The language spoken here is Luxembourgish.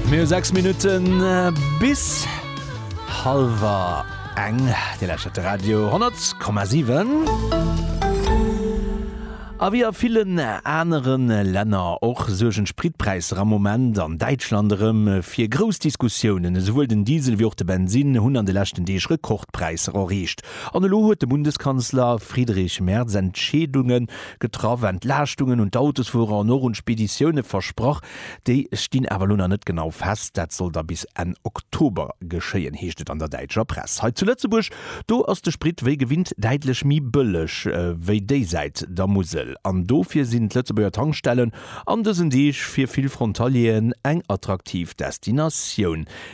Mir hu 6 Minutten bis Halwer eng Dir lächert de Radio 10,7. A wéi a villen anere Länner och suergen d'Spritpräisser am Moment an Däitschland erëm fir grouss Diskussiounen. Esouwuel den Diesel wéi och de Bensinn hunn an de leschten Deeg Rekordpräisser erreecht. An elo huet de Bundeskanzler Friedrich Merz Entscheedunge Getraff, Entlaaschtungen un d'Autosfuerer an och un d'Speditioune versprach. Déi stinn awer elo nach net genau fest. Dat soll da bis Enn Oktober geschéien, heescht et an der däitscher Press. Hei zu Lëtzebuerg, do ass de Sprit wéi gewinnt däitlech méi bëlleg wéi déisäit der Musel. An dofir sinn d'Lëtzebuerger Tankstellen an dësen Deeg fir vill Frontalieren eng attraktiv Destinatioun.